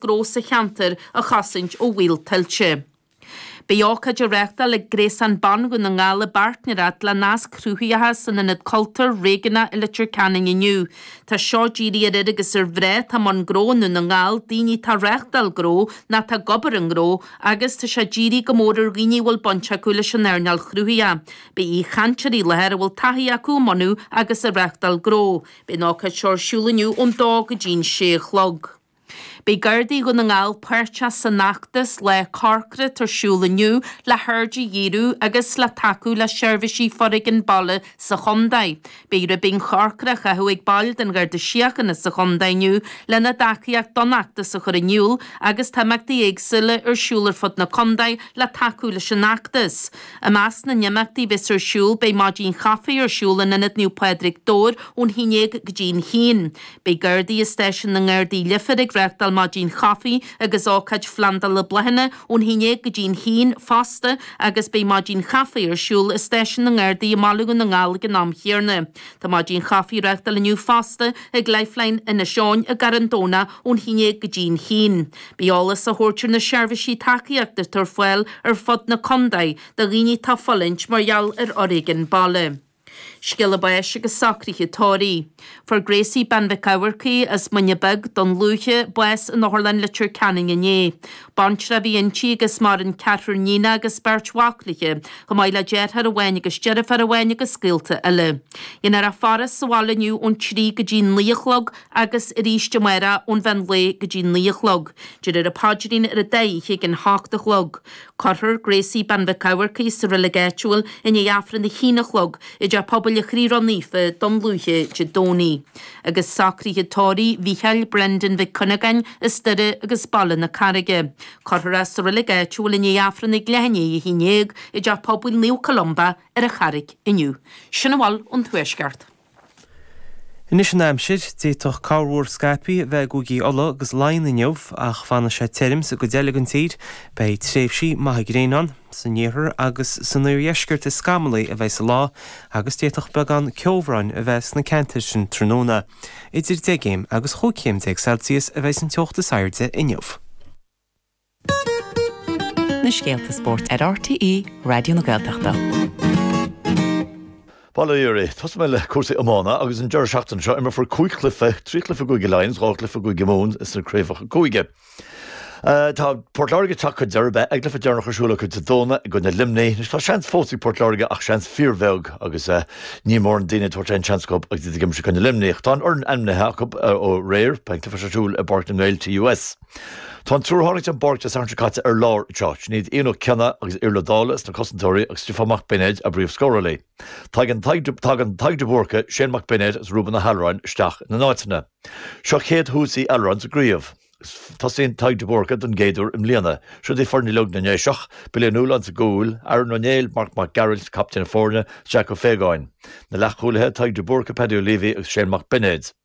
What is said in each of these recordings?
gnó sa cheantar a chosaint ó bhaol tuilte. Beidh ócáid á reáchtáil ag Gréasán Ban Dhún na nGall i bpáirtnéireacht le Nasc Cruthaitheacha san Ionad Cultúir Réigiúnach i Leitir Ceanainn inniu. Tá seo dírithe ar fhir agus ar mhná atá i mbun gnó i nDún na nGall, daoine atá ag reáchtáil gnó nó atá ag obair i ngnó, agus tá sé dírithe go mór ar dhaoine a bhfuil baint acu leis an earnáil chruthaitheach. Beidh aoichainteoirí i láthair a bhfuil taithí acu i mbunú agus i reáchtáil gnó. Beidh an ócáid seo ar siúl inniu ón dó go dtí'n sé a chlog. Beidh Gardaí Dhún na nGall páirteach san fheachtas 'Lá Corcra' atá ar siúl inniu le haird a dhíriú agus le tacú le seirbhísí foréigean baile sa chontae. Beidh ribín corcra á chaitheamh ag baill den Gharda Síochána sa chontae inniu lena dtacaíocht don fheachtas a chur in iúl agus tá imeachtaí éagsúla ar siúl ar fud na contae le tacú leis an fheachtas. I measc na n-imeachtaí a bheas ar siúl beidh maidín chaife ar siúl in Ionad Naomh Pádraig, Dobhair ón 11 go dtí an 1. Beidh Gardaí i Stáisiún na nGardaí i Leifear ag reáchtáil maidín chaife agus ócáid phlandála bláthanna ón haon déag go dtí an haon fosta agus beidh maidín chaife ar siúl i Stáisiún na nGardaí i mBaile Dhún na nGall ag an am chéarna. Tá maidín chaife á reáchtáil inniu fosta ag Lifeline Inis Eoghain i gCarn Domhnach ón haon déag go dtí an haon. Beidh eolas á thabhairt ar na seirbhísí tacaíochta atá ar fáil ar fud na contae do dhaoine atá ag fulaingt mar gheall ar fhoréigean baile. Scéala báis agus socruithe tórraimh. Fuair Gracie Bean Mhic Eamharcaigh as Muine Bheag, Dún Lúiche, bás in Otharlann Leitir Ceanainn inné. Baintreach a bhí inti agus maireann ceathrar níonacha agus beirt mhac léi, chomh maith le deartháir amháin agus deirfiúr amháin agus gaolta eile. Déanfar a faire sa bhaile inniu ón trí go dtí naoi a chlog agus arís amáireach ón mheán lae go dtí naoi a chlog. Déarfar an paidrín ar an dá oíche ag an hocht a chlog. Cuirfear Gracie Bean Mhic Eamharcaigh sa reilig áitiúil i ndiaidh Aifreann a haon a chlog i dTeach Pobail an Chroí Ró-Naofa, Dún Lúiche, Dé Domhnaigh. Agus socruithe tórraimh Mhicheáil Brendan Mhic Cuinneagáin as Doire agus Baile na Carraige. Cuirfear é sa reilig áitiúil i ndiaidh Aifreann ag leath i ndiaidh a haon dhéag i dTeach Pobail Naomh Columba ar an Charraig inniu. Sin a bhfuil ón Tuaisceart. Anois an aimsir. D'fhéadfadh corrmhúr scaipthe a bheith ag Cúigí Uladh agus Laighean inniu ach fanfaidh sé tirim sa gcuid eile den tír. Beidh tréimhsí maithe gréine ann. San iarthar agus san oirdheisceart is scamallaí a bheas an lá agus d'fhéadfadh beagán ceobhráin a bheith sna ceantair sin tráthnóna. Idir deich gcéim agus chúig chéim déag Celsius a bheas an teocht is airde inniu. na scéalta spóirt ar RTÉ Raidió na Gaeltachta. Bail ó Dhia oraibh, tosóidh mé le cúrsaí iomána agus an deireadh seachtaine seo imreofar cúig chluife, trí chluife i gCúige Laighean is dhá chluife i gCúige Mumhan sna craobhacha cúige. Eh, tá Port Láirge ag teacht chun deireadh, beidh a gcluife deireanach ar siúl acu Dé Domhnaigh i gcoinne Luimnigh. Anois tá seans fós ag Port Láirge ach seans fíorbheag agus eh, níl mórán daoine ag tabhairt aon seans acu agus iad ag imirt i gcoinne Luimnigh. Tá an fhoireann ainmnithe acu eh, ó aréir, beidh an cluife seo ar siúl i bPáirc na nGael, TUS. Tá an triúr a tháinig den bpáirc Dé Sathairn seo caite ar lár anseo, sin iad Ian Ó Cionnaith agus Iarlaith Ó Dálaigh sna cosantóirí agus Stiofán Mac Beinéid, a bpríomhscórálaí. Tagann Tadhg De Búrca, Shane Mac Beinéid agus Reuben Ó hAllmhuráin isteach ina n-áiteanna. Seo chéad thús Uí Allmhuráin sa gcraobh. Tosaíonn Tadhg De Búrca don gcéad uair i mbliana. Siúd í foireann uilig na nDéiseach, Billy Ó Nualláin sa gcúl, Aaron Ó Néill, Marc Mac Gearailt, captaen na foirne, is Jack Ó Faogáin. Na leathchúlaithe, Tadhg De Búrca, Paddy Ó Leavey agus Shane Mac Beinéid.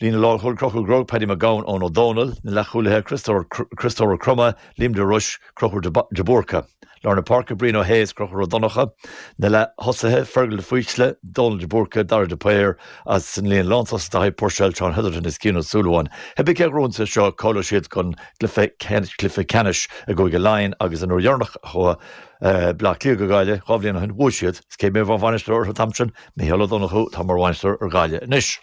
Líne lánchúil Conchúr Groarke, Paddy Mac Gabhann, Eoin Ó Dónaill, na leathchúlaithe Críostóir Ó Cromtha, Liam de Rois, Conchúr de Búrca. Lár na páirce Brian Ó hAodha is Conchúr Ó Donnchadha, na leath-thosaithe Fergal de Faoite, Dónal de Búrca, Dara de Paor agus san líne lántosach Daithí Puirséil, John Hetherton is Cian Ó Súilleabháin. Cibé cé a ghnóthós é seo cáileoidh siad chun cluiche ceannais i gCúige Laighean agus an uair dheireanach a chuaigh Bleá Cliath go Gaillimh, dhá bhliain ó shin, bhuaigh siad. Is cé a bhí mar bhainisteoir orthu an t-am sin? Micheál Ó Donnchú atá mar bhainisteoir ar Ghaillimh anois.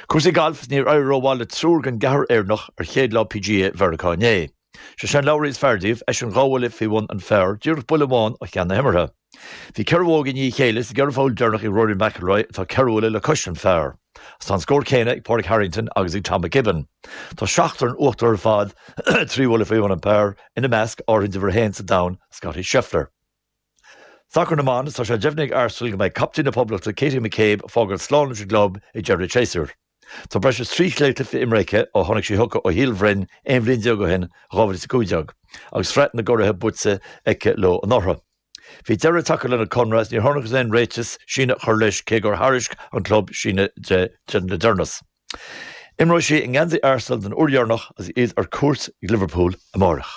Cúrsaí gailf, Níor éirigh rómhaith le triúr den gceathrar Éireannach ar chéad lá PGA Mheiriceá inné. Sé Shane Lowry is fearr díobh, eisean dhá bhuille faoi bhun an phar, díreach buille amháin ó cheann na himeartha. Bhí ceithre bhógaí i ndiaidh a chéile sa gceithre pholl deireanach ag Rory McIlroy atá ceithre bhuille le cois an phar. Agus tá an scór céanna ag Pádraig Harrington agus ag Tom McKibbin. Tá seachtar in uachtar ar fad, trí bhuille faoi bhun an phar, ina measc, ar ndóigh uimhir a haon sa domhan, Scottie Scheffler. Sacar na mBan, is tá sé deimhnithe ag Arsenal go mbeidh captaen na Poblachta Katie McCabe ag fágáil slán leis an gclub ag deireadh an tséasúir. Tá breis is trí chéad cluiche imeartha aici ó tháinig sí chucu ó Shíol Bhroin aon bhliain déag ó shin, 2015, agus Sraith na gCuradh buaite aici leo anuraidh. Bhí deireadh tagtha lena conradh agus níor thángthas ar aon réiteach síneadh a chur leis cé gur thairisc an club síneadh di le deireanas. Imreoidh sí i ngeansaí Arsenal don uair dheireanach agus iad ar cuairt ag Liverpool amárach.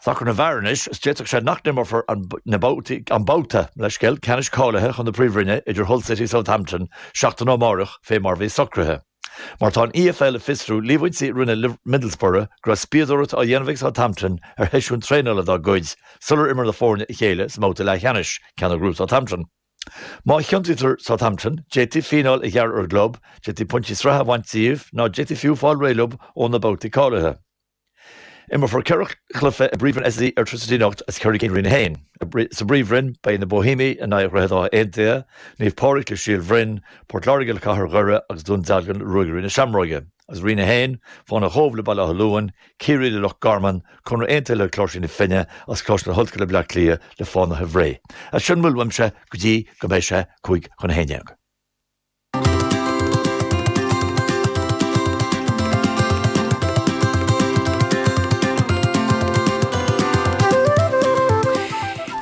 Sacar na bhfear anois agus d'fhéadfadh sé nach n-imeofar an babhta leithscéal ceannais cáilithe chun na Príomhroinne idir Hull City is Southampton seachtain ó amárach fé mar a bhí socraithe. Mar tá an EFL ag fiosrú líomhaintí a rinne Middlesbrough go raibh spíodóireacht á dhéanamh ag Southampton ar sheisiúin traenála dá gcuid sular imir na foirne a chéile sa mbabhta leathcheannais, ceann a ghnóthaigh Southampton. Má chiontaítear Southampton, d'fhéadfaí fíneáil a ghearradh ar an gclub, d'fhéadfaí pointí sraithe a bhaint díobh nó d'fhéadfaí fiú fáil réidh leo ó na babhtaí cáilithe. Imreofar ceithre chluiche i bPríomhroinn SSE Airtricity anocht is ceithre cinn i Roinn 1. Sa bPríomhroinn, beidh na Bohímiaigh in aghaidh Dhroichead Átha Aontaithe, Naomh Pádraig le Síol Bhroin, Port Láirge le Cathair Dhoire agus Dún Dealgan le Ruagairí na Seamróige. Is i Roinn 1, Fánaithe an Chóibh le Baile Átha Luain, Ciarraí le Loch Garman, Conradh Aontaithe le Cláirsigh na Finne, is Coláiste na hOllscoile Bleá Cliath le Fánaithe Bhré. Is sin a bhfuil uaimse go dtí go mbeidh sé cúig chun a haon dhéag.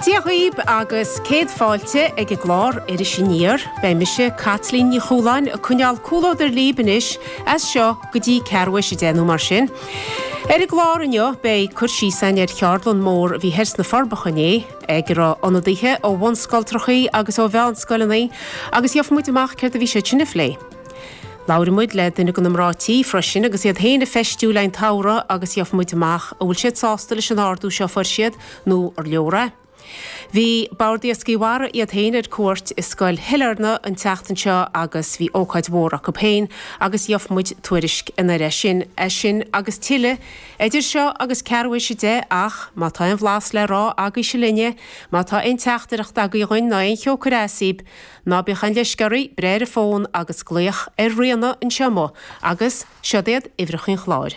Dia dhaoib agus céad fáilte ag an gclár Iris Aniar. Beidh mise, Caitlín Ní Chualáin, ag coinneáil comhluadar libh anois as seo go dtí ceathrú théis a dó dhéag mar sin. Ar an gclár inniu beidh cur síos againn ar cheardlann mór a bhí thoir sna Forbacha inné ag a raibh ionadaithe ó bhunscoiltreachaí agus ó mheánscoileanna agus gheobhaidh muid amach céard a bhí siad in ann a phlé. Labhróidh muid le duine de na mná tí freisin agus iad féin ag feistiú i leith an tsamhraidh agus gheobhaidh muid amach an bhfuil siad sásta leis an ardú seo a fuair siad nó ar leor é. Bhí Bord Iascaigh Mhara iad féin ar cuairt i Scoil Shailearna an tseachtain seo agus bhí ócáid mhór acu féin agus gheobhaidh muid tuairisc anoir as sin. É sin agus tuilleadh idir seo agus ceathrú théis a deich ach má tá aon bhlas le rá agaibhse linne, má tá aon teachtaireacht agaibh dhúinn ná aon cheo ag cur as daoibh, ná bíodh aon leisce oraibh breith ar an bhfón agus glaoch ar Ríona anseo amuigh agus seod iad uimhreachaí an chláir.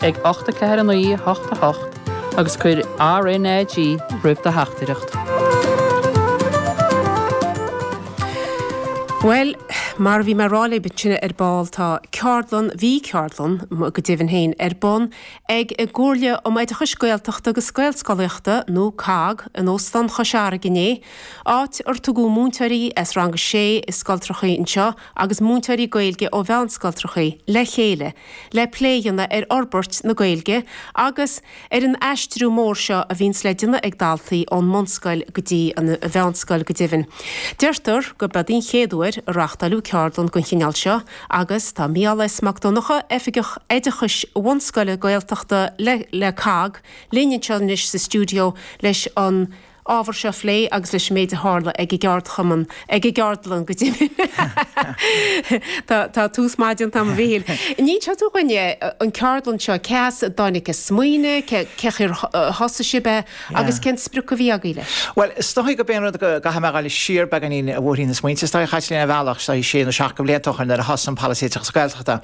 ag 8 4 9 8 8 agus cuir RNAG roimh do theachtaireacht. Bhuel, mar a bhí mé rá libh ansin ar ball tá ceardlann, bhí ceardlann go deimhin féin ar bun ag an gComhairle um Oideachas Gaeltachta agus Gaelscolaíochta nó COGG in Óstán Chois Fharraige inné, áit ar tugadh múinteoirí as rang a sé i scoiltreachaí anseo agus múinteoirí Gaeilge ó mheánscoiltreachaí le chéile le plé a dhéanamh ar fhorbairt na Gaeilge agus ar an aistriú mór seo a bhíonns le déanamh ag daltaí ón mbunscoil go dtí an mheánscoil go deimhin. Deirtear gurb eod é an chéad uair a reáchtáileadh ceardlann den chineál seo agus tá Micheál S. Mac Donncha, Oifigeach Oideachais Bhunscoile Gaeltachta le COGG, linn anseo anois sa stiúideo leis an ábhar seo a phlé agus leis an méid a tharla ag an gceardchumann, ag an gceardlann go deimhin. Tá tús maith déanta agam, a Mhichíl. Inis tú dhúinne, an ceardlann seo, cé as a dtáinig an smaoineamh, cé, cén chaoi ar thosaigh sibh é agus cén sprioc a bhí agaibh leis? Bhuel, is dóichí gob é an rud go gcaithfidh mé a ghabháil siar beagáinín i mbóithrín na smaointe. Is dóichí chaith linn ar bhealach, is dóichí sé nó seacht de bhlianta ó shoin nuair a thosaigh an Polasaí Oideachais Gaeltachta,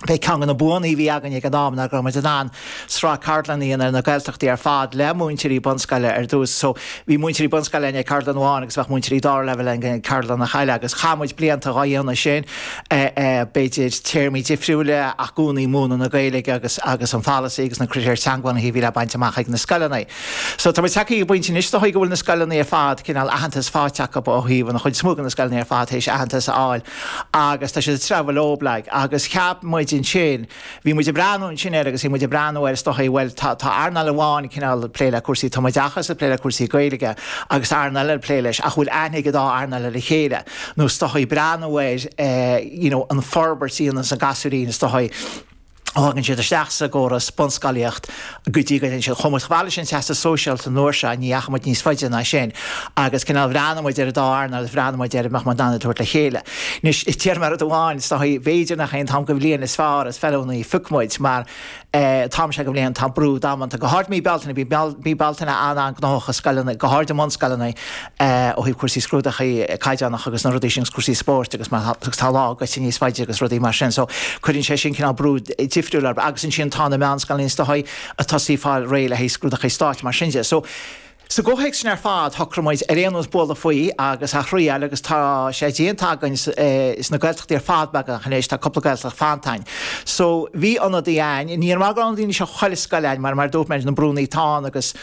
B'é ceann de na buanna a bhí againn ag an am ná go raibh muid in ann sraith ceardlann a dhéanamh ar na Gaeltachtaí ar fad le múinteoirí bunscoile ar dtús. So, bhí múinteoirí bunscoile againn ag ceardlann amháin agus bheadh múinteoirí dara leibhéal againn ag ceardlannachaí eile agus chaith muid blianta dhá dhéanamh sin, b'fhéidir téarmaí difriúil ach i gcónaí múineadh na Gaeilge agus agus an pholasaí agus na critéir teangabhunaithe a bhí le baint amach ag na scoileanna. So, tá muid tagtha ag an bpointe anois is dóigh go bhfuil na scoileanna ar fad cineál aitheantas fáighte acu ó thaobh an chuid is mó de na scoileanna ar fad tar éis aitheantas a fháil agus tá siad ag treabhadh leo, baileach, agus cheap muid ansin, bhí muid ag breathnú ansin air agus bhí muid ag breathnú air is dócha, bhuel tá earnáil amháin cineál ag plé le cúrsaí tumoideachas, ag plé le cúrsaí Gaeilge agus tá earnáil eile ag plé leis ach an bhfuil aithne ag an dá earnáil ar a chéile nó is dócha, ag breathnú air you know an fhorbairt a dhéanann na gasúirín is dócha. thagann siad isteach sa gcóras bunscolaíocht go dtí go dtéann siad chomh fada leis an Teastas Sóisialta an uair seo, ní dheachaigh muid níos faide ná sin agus cineál bhreathnaigh muid ar an dá earnáil agus bhreathnaigh muid ar an mbeadh muid in ann iad a thabhairt le chéile. Anois, téarma rud amháin, is dóigh, b'fhéidir nach é an t-am go bhliain is fearr is feiliúnaí phioc muid mar an t-am seo go bhliain tá brú damanta, go háirid mí Bealtaine, bíonn mí Bealtaine an-an-gnóthach i scoileanna, go háirid i mbunscoileanna. ó thaobh cúrsaí scrúdacha caighdeánacha agus na rudaí sin agus cúrsaí spóirt agus mar atá, agus tá lá gaibhte níos faide agus rudaí mar sin. So, cuireann sé sin cineál brú difriúil ar, agus ansin tá na meánscoileanna is dóichí ag tosaí ag fáil réidh le haghaidh scrúdacha stáit mar sin de. So, sa gcomhthéacs sin ar fad, shocraigh muid ar aon nós bualadh faoi agus a thriáil agus tá sé déanta againn sna Gaeltachtaí ar fad beagnach anois, tá cúpla Gaeltacht fanta. So, bhí ionadaí ann, ní hé go raibh an líon seo chuile scoil ann mar mar a dúirt mé, na brúnna atá ann agus,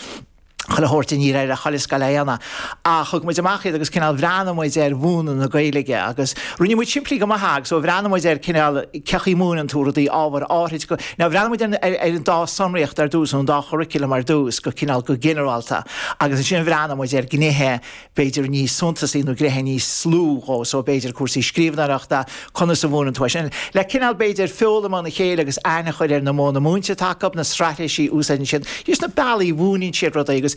chuile thabhairt, níor éirigh le chuile scoil a bheith ann, ach thug muid amach iad agus cineál bhreathnaigh muid ar mhúineadh na Gaeilge agus choinnigh muid simplí go maith agus ó bhreathnaigh muid ar cineál cén chaoi a múineann tú rudaí ábhair áithrid nó bhreathnaigh muid ar ar an dá shonraíocht ar dtús nó an dá churaclam ar dtús go cineál go ginearálta agus ansin bhreathnaigh muid ar ghnéithe b'fhéidir níos suntasaí nó gnéithe níos lú dhe, so b'fhéidir cúrsaí scríbhneoireachta, conas a mhúineann tú é sin, le cineál b'fhéidir foghlaim óna chéile agus aithne a chur ar na modhanna múinte atá acu, na straitéisí a úsáideann siad, just na bealaí a mhúineann siad rudaí agus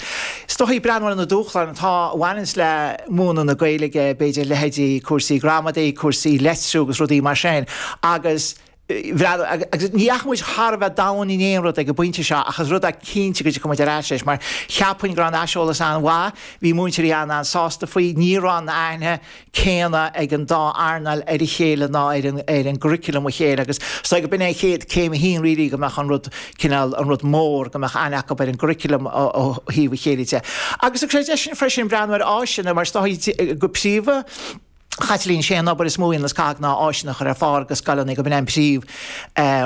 is dóichí breathnú ar na dúshláin atá a bhaineanns le múineadh na Gaeilge, b'fhéidir leithéidí cúrsaí gramadaí, cúrsaí litriú agus rudaí mar sin agus. Bhreathnaigh, agus ní dheachaigh muid thar a bheith domhain in aon rud ag an bpointe seo, ach is rud é cinnte go dtiocfaidh muid ar ais leis, mar cheapfainn go raibh an aiseolas an-mhaith, bhí múinteoirí ann an-sásta faoi, ní raibh an aithne chéanna ag an dá earnáil ar a chéile ná ar churaclam a chéile agus is dóigh gob in céim a haon really go mbeadh an rud cineál an rud mór go mbeadh aithne acu ar an gcuraclam ó thaobh a chéile de. Agus thug sé deis dhúinn freisin breathnú ar áiseanna mar is dóichí go príomha, Chaitlín, sé an obair is mó atá ag COGG ná áiseanna a chur ar fáil go scoileanna gob in é an príomh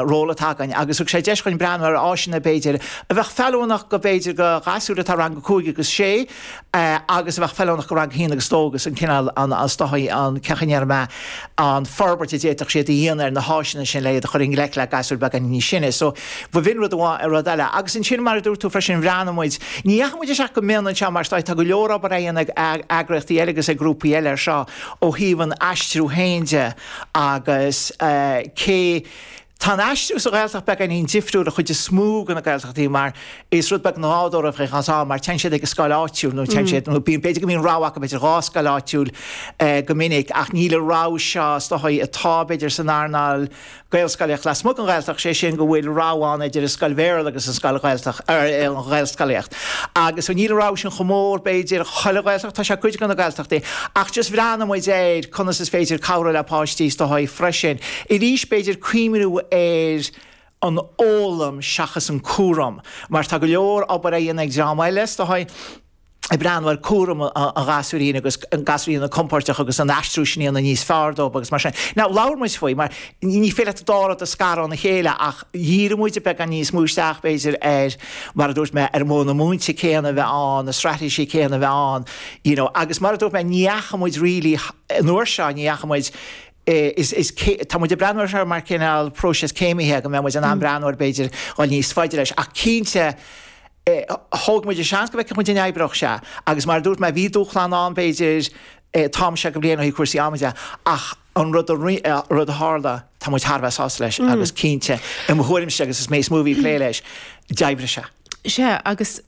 ról atá againn agus thug sé deis dhúinn breathnú ar áiseanna b'fhéidir a bheadh feiliúnach go b'fhéidir go ghasúir atá i rang a cúig agus sé agus a bheadh feiliúnach go bhliain a haon agus dó agus an cineál an an is dóichí an cén chaoi a ndéarfaidh mé an fhorbairt a d'fhéadfadh siad a dhéanamh ar na háiseanna sin le iad a chur i ngleic le gasúir beagáinín níos sine so Ba bh'in rud amháin, rud eile. Agus ansin, mar a dúirt tú freisin, bhreathnaigh muid, ní dheachaigh muid isteach go mion anseo mar tá go leor obair á dhéanamh ag eagraíochtaí eile agus ag grúpaí eile ar seo ó thaobh an aistriú féin de agus cé go bhfuil an aistriú sa Ghaeltacht beagáinín difriúil sa chuid is mó de na Gaeltachtaí mar is rud beagnach nádúrtha é anseo mar téann siad ag an scoil áitiúil nó téann siad nó bíonn b'fhéidir go mbíonn rogha acu b'fhéidir dhá scoil áitiúil go minic ach níl an rogha seo is dócha atá b'fhéidir san earnáil Gaelscolaíocht lasmuigh den Ghaeltacht, sé sin go bhfuil rogha ann idir an scoil Bhéarla agus an scoil Ghaeltacht, er, an Ghaelscolaíocht. Agus níl an rogha sin chomh mór, b'fhéidir, chuile Ghaeltacht, tá sé cuid de na Gaeltachtaí, ach just bhreathnaigh muid ar conas is féidir cabhrú le páistí is dóichí freisin, arís, b'fhéidir cuimhniú ar an fhoghlaim seachas an cúram, mar tá go leor obair á dhéanamh ag dream eile is dóichí. i bplé mar cúram an ghasúirín agus an gasúirín a bheith compordach agus an aistriú sin a dhéanamh níos fearr dóibh agus mar sin. Nó labhair muid faoi mar ní féidir leat dá rud a scaradh óna chéile ach dhírigh muid beagán níos mó isteach b'fhéidir ar, mar a dúirt mé, ar modhanna múinte céanna a bheith ann, na straitéisí céanna a bheith ann, you know, agus mar a dúirt mé ní fhaca muid really an uair seo, ní fhaca muid, Tá muid ag breathnú ar seo mar cineál próiseas céimithe, go mbeadh muid in ann breathnú ar b'fhéidir dul níos faide leis. Ach cinnte, thóg muid an seans go bhfeicfeadh muid an oibreodh sé. Agus mar a dúirt mé, bhí dúshláin ann b'fhéidir, tá mise ag plé le, cúrsaí ama de, ach an rud a tharla, tá muid thar a bheith sásta leis agus cinnte, i mo thuairimse agus is mé is mó a bhí ag plé leis, d'oibrigh sé. Sea, agus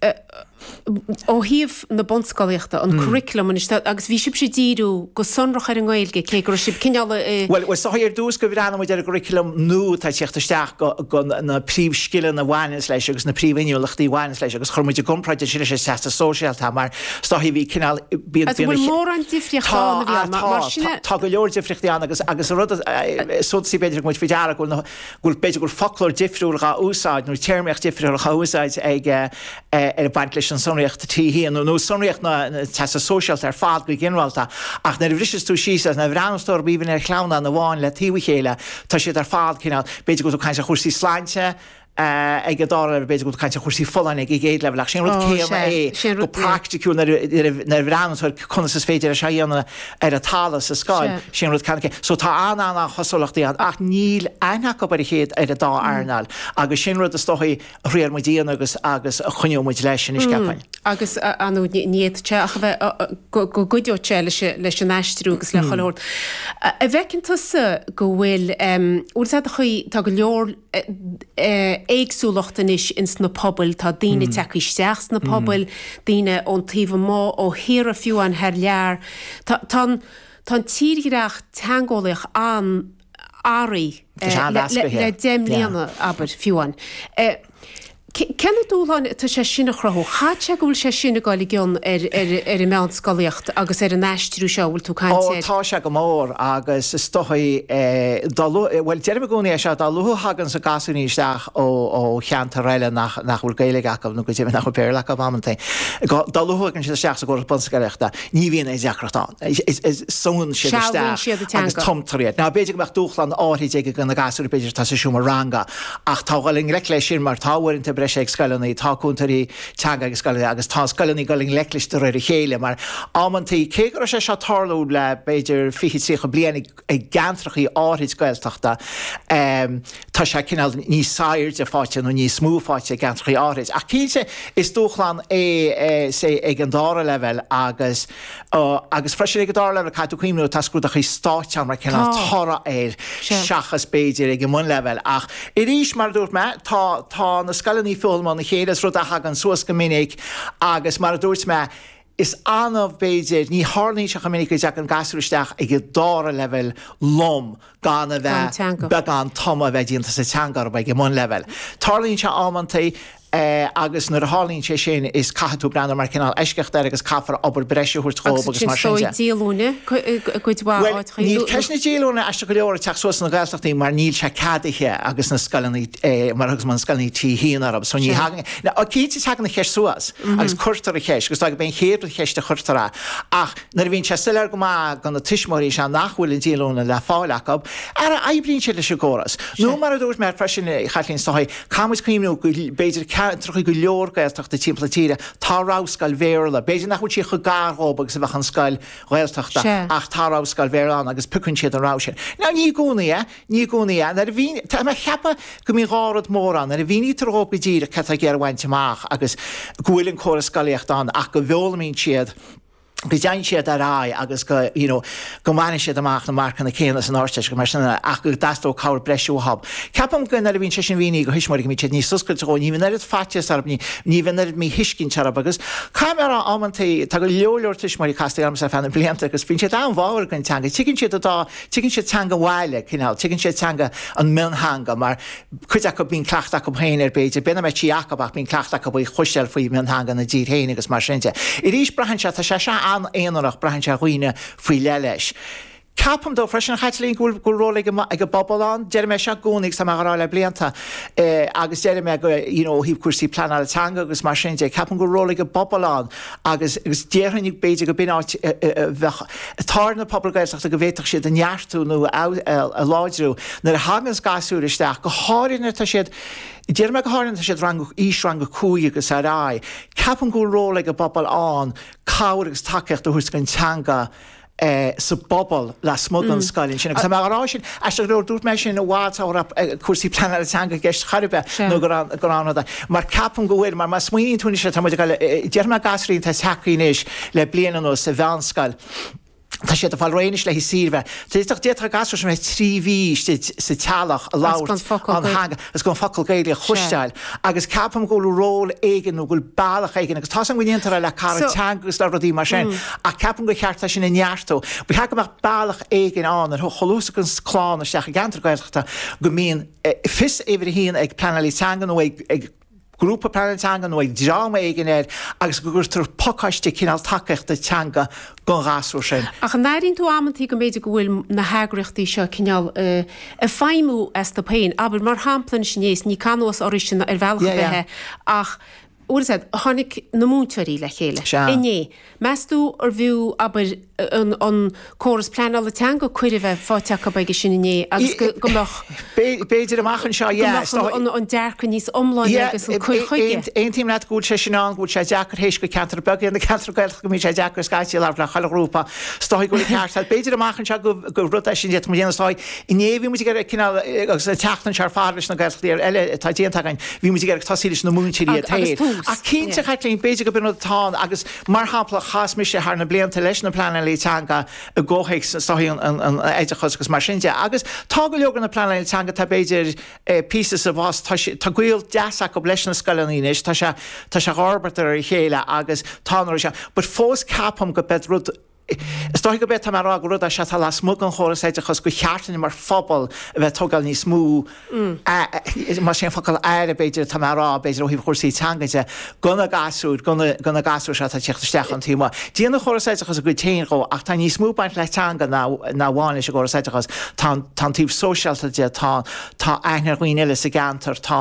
ó thaobh na bunscolaíochta, an curriculum anois de, agus bhí sibhse ag díriú go sonrach ar an nGaeilge, cé go raibh sibh cineál i. Bhuel, is dóichí ar dtús gur bhreathnaigh muid ar an gcurriculum nua atá ag teacht isteach, go na príomhscileanna a bhaineanns leis agus na príomhinniúlachtaí a bhaineanns leis agus chuir muid i gcomparáid ansin leis an Teastas Sóisearach mar is dóichí bhí cineál, bíonn, Agus an bhfuil mórán difríochta ann, a bhí ann, mar sin. Tá, tá, tá go leor difríochtaí ann agus, agus an rud, is suntasaí b'fhéidir a thug muid faoi deara go bhfuil na. gur b'fhéidir gur foclóir difriúil dhá úsáid nó téarmaíocht difriúil dhá úsáid ag baint leis an tsonraíocht T hAon nó nó sonraíocht an Teastais Shóisearaigh ar fad go ginearálta ach nuair a bhriseas tú síos é nó a bhreathnaíos tú air b'fhéidir ar shleamhnán amháin le taobh a chéile tá siad ar fad cineál b'fhéidir go bhfuil tú ag caint ar chúrsaí sláinte ag an dá leibhéal b'fhéidir go bhfuil tú ag caint ar chúrsaí folláine ag an gcéad leibhéal ach sin an rud céanna é go praiticiúil nuair a bhreathnaíos tú ar conas is féidir é seo a dhéanamh ar an talamh sa scoil, sin rud ceann céanna. So tá an-an-chosúlachtaí ann ach níl aithne acu ar a chéile, ar an dá earnáil agus sin rud is dóichí a thriail muid a dhéanamh agus agus a choinneoidh muid leis anois ceapaim. Agus ar ndóigh ní fhéadfadh sé ach a bheith go gcuideodh sé leis an aistriú agus le cabhair a thabhairt. An bhfeiceann tusa go bhfuil, óir is dóichí, tá go leor, éagsúlacht anois ins na pobail, tá daoine ag teacht isteach sna pobail, daoine ón taobh amuigh, ó thíortha fiú amháin thar lear. Tá an Tá an tírdhreach teangeolaíoch an-athraithe le deich mbliana, abair, fiú amháin. Cén dúshlán atá sé sin a chruthú? Chaithfeadh sé go bhfuil sé sin ag dul i gcion ar an meánscolaíocht agus ar an aistriú seo a bhfuil tú ag caint air. Ó tá sé go mór agus is dóigh dá lu, bhuel deirim i gcónaí é seo, dá luaithe a thaganns an gasúirín isteach ó cheantar eile nach nach bhfuil Gaeilge acu nó go deimhin nach bhfuil Béarla acu amantaí, go, dá luaithe a thagann siad isteach sa gcóras bunscolaíochta ní bhíonn aon deacracht ann. Súnn siad isteach agus Sealbhaíonn siad an teanga. tumtar iad. Now b'fhéidir go mbeadh dúshláin áirithe ag na gasúir b'fhéidir atá sa seomra ranga Ach tá siad a dhul i ngleic leis sin mar tá uaireanta breise ag scoileanna, tá cúntóirí teanga ag scoileanna agus tá scoileanna ag dul i ngleic leis de réir a chéile mar amanntaí. Cé go raibh sé seo ag tarlú le b'fhéidir fiche, tríocha bliain i gceantrachaí áithrid Gaeltachta, tá sé cineál níos airde fáighte nó níos mó fáighte i gceantrachaí áithrid. Ach cinnte is dúshlán é, say, ag an dára leibhéal agus, Agus freisin, ag an dara leibhéal, caithfidh tú cuimhniú, tá scrúduithe stáit ann mar chineál toradh air seachas b'fhéidir ag an mbunleibhéal. Ach arís, mar a dúirt mé, tá, tá na scoileanna ag foghlaim óna chéile, is rud a thagann suas go minic agus, mar a dúirt mé, is annamh, b'fhéidir, ní tharlaíonn sé chomh minic go dteagann gasúir isteach ag an dara leibhéal lom gan a bheith, beagán tumadh a bheith déanta sa teanga orthu ag an mbunleibhéal. Tarlaíonn sé amanta, é agus nuair a tharlaíonn sé sin is caithfidh tú breathnú mar cineál eisceacht air agus caithfear obair breise a thabhairt dhóibh agus mar sin de. Agus ansin is dóigh díolúine i gcuid mhaith áiteacha. Bhuel níl ceist na díolúine aisteach go leor ag teacht suas sna Gaeltachtaí mar níl sé ceadaithe agus na scoileanna mar agus na scoileanna aitheanta so ní thagann, ó cinnte tagann an cheist suas agus cuirtear an cheist agus déarfainn go mba é an chéad cheist a chuirtear a ach nuair a bhíonn sé soiléir go maith do na tuismitheoirí is ea nach bhfuil an díolúine le fáil acu, ara oibríonn siad leis an gcóras. Nó mar a dúirt mé freisin a Chaitlín is dóigh, Caithfidh muid cuimhniú go b'fhéidir ceantracha go leor Gaeltachta timpeall na tíre, tá rogha scoil Bhéarla, b'fhéidir nach bhfuil sí chomh gar dhóibh agus a bheadh an scoil Ghaeltachta ach tá rogha scoil Bhéarla ann agus piocann siad an rogha sin. Now ní i gcónaí é, ní i gcónaí é. Nuair a mhíníonn, tá mé a cheapadh go mbíonn dhá rud mór ann, nuair a mhínítear dhóibh go díreach céard atá siad ag iarraidh a bhaint amach agus go bhfuil an córas scolaíochta ann ach go bhfoghlaimíonn siad go dtéann siad ar aghaidh agus go, you know, go mbaineann siad amach na marcanna céanna san Ardteist agus mar sin de ach go dteastódh cabhair breise uathub. Ceapaim go, nuair a bhíonn sé sin mínithe dho thuismitheoirí go mbíonn siad níos oscailte dhó, ní bhíonn oiread faitíos orthub, ní, ní bhíonn oiread míthuiscint orthub agus caithfidh mé a rá amantaí tá go leor, leor tuismitheoirí casta ormsa ar feadh na blianta agus bíonn siad an-bháúil dhon teanga, tuigeann siad an dá, tuigeann siad teanga an bhaile, cineál, tuigeann siad teanga an mhiontheanga mar, cuid acu, bíonn cleachtadh acu féin air, b'fhéidir, b'in an mother tongue acu, ach bíonn cleachtadh acu faoi is cosúil, faoi mhiontheanga ina dtír féin agus mar sin de. Arís, braitheann sé, tá sé seo an-aonarach, braitheann sé ar dhaoine faoi leith leis. Ceapaim dóigh freisin, a Chaitlín, go bhfuil ról ag an bpobal ann. Deirim é seo i gcónaí agus tá mé á rá le blianta é agus déarfaidh mé go, you know, ó thaobh cúrsaí pleanála teanga agus mar sin de, ceapaim go bhfuil ról ag an bpobal ann agus déarfainn b'fhéidir gur b'in áit a bheadh ar na pobail Gaeltachta go bhféadfadh siad é a neartú nó a láidriú nuair a thaganns gasúr isteach, go háirithe nuair atá siad, déarfaidh mé go háirithe nuair atá siad ra, aois rang a cúig agus ar aghaidh. Ceapaim go bhfuil ról ag an bpobal ann cabhair agus tacaíocht a thabhairt chun an teanga a sa bpobal lasmuigh den scoil ansin. Agus tá mé ag rá sin, aisteach go leor, dúirt mé sin i bhfad sula raibh cúrsaí pleanála teanga i gceist ar chaoi ar bith nó go raibh go raibh an mar ceapaim go bhfuil, mar má smaoiníonn tú anois le tá muid ag cailleadh, déarfaidh mé gasúir atá ag teacht anois le bliain anuas sa mheánscoil, tá siad ag fáil réidh anois le haghaidh saoire. D'fhéadfadh, d'fhéadfadh na gasúir sin a bheith trí mhí istigh sa teallach ag labhairt a dteanga. Is gan focal Gaeilge a chloisteáil agus ceapaim go bhfuil ról éigin nó go bhfuil bealach éigin agus tá's agam go ndéantar é le cara teanga agus le rudaí mar sin ach ceapaim gur cheart é sin a neartú. Ba cheart go mbeadh bealach éigin ann a luaithe is a thagann clann isteach i gceantar Gaeltachta go mbíonn fios uimhir a haon ag pleanálaí teanga nó ag grúpa pleanála teanga nó ag dream éigin air agus go gcuirtear pacáiste cineál tacaíochta teanga don ghasúr sin. Ach an n-airíonn tú amantaí go mb'fhéidir go bhfuil na heagraíochtaí seo cineál ag feidhmiú astu féin? Abair, mar shampla, anois inné, is ní cáineadh oraibhse ná ar bhealach ar bith é, ach, bhfuil a fhios agat, tháinig na múinteoirí le chéile inné, Meastú arbh fhiú, abair, an córas pleanála teanga cuireadh a bheith faighte acu aige sin inné agus go mbeadh. B'fhéidir amach anseo, yeah. Is dóigh. Go mbeadh an dearcadh níos iomláine agus an cur chuige. Aontaím leat go bhfuil sé sin ann, go bhfuil sé deacair théis gur ceantair bheaga iad na ceantair Ghaeltachta go mbíonn sé deacair scaití labhairt le chuile ghrúpa. Is dóigh go bhfuil an ceart agat. B'fhéidir amach anseo gur rud é sin a d'fhéadfadh muid a dhéanamh is dóigh. Inné bhí muid ag iarraidh cineál, agus an tseachtain seo ar fad leis na Gaelscoileanna eile atá déanta againn, bhí muid ag iarraidh tosú leis na múinteoirí ar dtús. Ach cinnte, a yeah. Chaitlín, b'fhéidir gurb in rud atá ann agus, mar shampla, chas mise thar na blianta leis na pleanálaí teanga i gcomhthéacs na sochaí, an an oideachais agus mar sin de. Agus tá go leor de na pleanálaithe teanga, tá b'fhéidir eh píosa sa bhfás, tá sé, tá gaol deas acu leis na scoileanna anois, tá sé, tá sé ag forbairt de réir a chéile agus tá an rud seo, but fós ceapaim gurb é an rud, Is dóigh gurb é atá mé a rá gur rud é seo atá lasmuigh den chóras oideachais gur cheart dúinn mar phobal a bheith ag tógáil níos mó aire, más é an focal aire b'fhéidir atá mé a rá, b'fhéidir ó thaobh chúrsaí teanga de, do na gasúir, do na gasúir seo atá ag teacht isteach ón taobh amuigh. Déanann an córas oideachais a chuid féin dhó ach tá níos mó ag baint le teanga ná amháin leis an gcóras oideachais, tá an taobh sóisialta de, tá aithne ar dhaoine eile sa gceantar, tá.